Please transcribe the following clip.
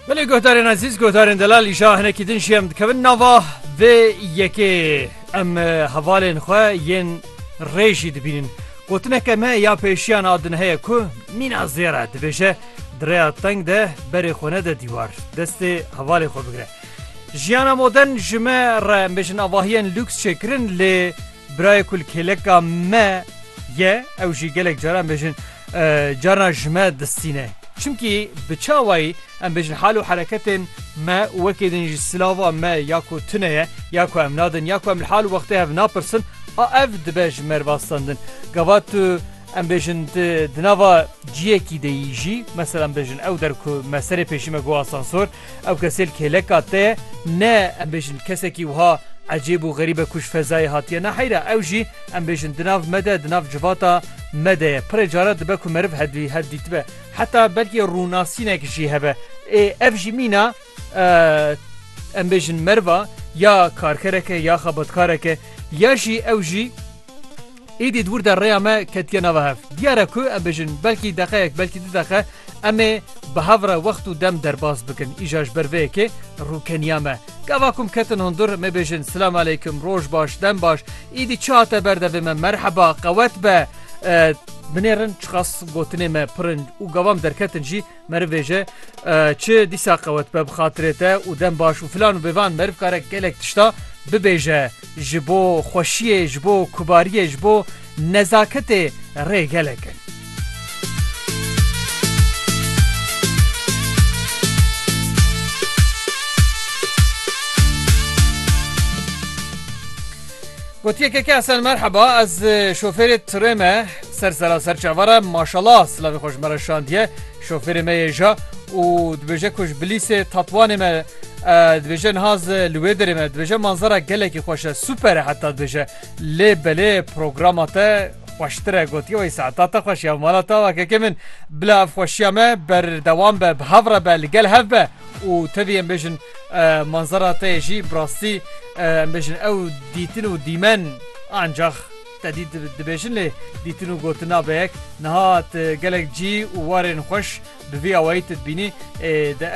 Belê guhdarên ezîz guhdarên delal îşa hinekî din jî em dikevin nava vê yekê em hevalên xwe yên rê jî dibînin. Gotineke me ya pêşiyan a din heye ku mîna zêre dibêje di rêya teng de berê xwe nede dîwar destê hevalê xwe bigire. Jiyana modern ji me re em bêjin avahiyên lûks çêkirin lê Birayê ku li kêleka me ye ew jî gelek caran bêjin carna ji me distîne. Çimkî bi çawayî em bêjin hal û hereketên me û wekî din jî silava me ya ku tune ye ya ku em nadin ya ku em li hal û wextê hev napirsin a ev dibe ji me rivastandin. Gava tu em bêjin di nava ciyekî de yî jî, meselan bêjin ew der ku me serê pêşî me ku asansor, Ew kesêl kêleka te ye. Ne, em bêjin kesekî wiha ecêb û xerîb e ku ji fezayê hatiye. Na heyra ew jî em bêjin di nav me de, di nav civata me de ye. Pirê caran dibe ku meriv hevdî hev dîtibe. Heta belkî rûnasînek jî hebe. Ê ev jî mîna em bêjin meriva ya karkerek e ya xebatkarek e ya jî ew jî. Êdî di wir de rêya me ketiye nava hev. Diyar e ku em bêjin belkî deqeyek belkî du deqe em ê bi hev re wext û dem derbas bikin. Îja ji ber vê yekê rûkeniya me. Gava ku em ketin hundir em ê bêjin silam aleykum, roj baş, dem baş, êdî çi hate ber devê me, merheba, qewet be. Binêrin çiqas gotinê me pir in û gava em derketin jî, Meriv ê ji çi dîsa qewet be bi xatirê te û dem baş û filan û bêvan meriv kare gelek tişta bibêje ji bo xweşiyê ji bo kubariyê ji bo nezaketê rê gelek in. Gotiye keke Esen merheba ez şofêrê tirê me Ser sera ser çavara maşala silavê xwe ji me re şandiye şofêrê me yê ja û dibêje ku ji bilîsê tatwanê me dibêje niha zi li wê derê me dibêje manzara gelekî xweş e super e heta dibêje lê belê programa te xweştir e gotiye wey saeta te xweş ya mala te kekê min bila ev xweşiya me berdewam be bi hev re be li gel hev be û tevî em bêjin manzara te yê jî bi rastî em bêjin ew dîtin û dîmen ancax Te dît dibêjin lê dîtin û gotin nabe yek. Niha tu gelek cî û warên xweş bi vî awayî tu dibînî. Ê de.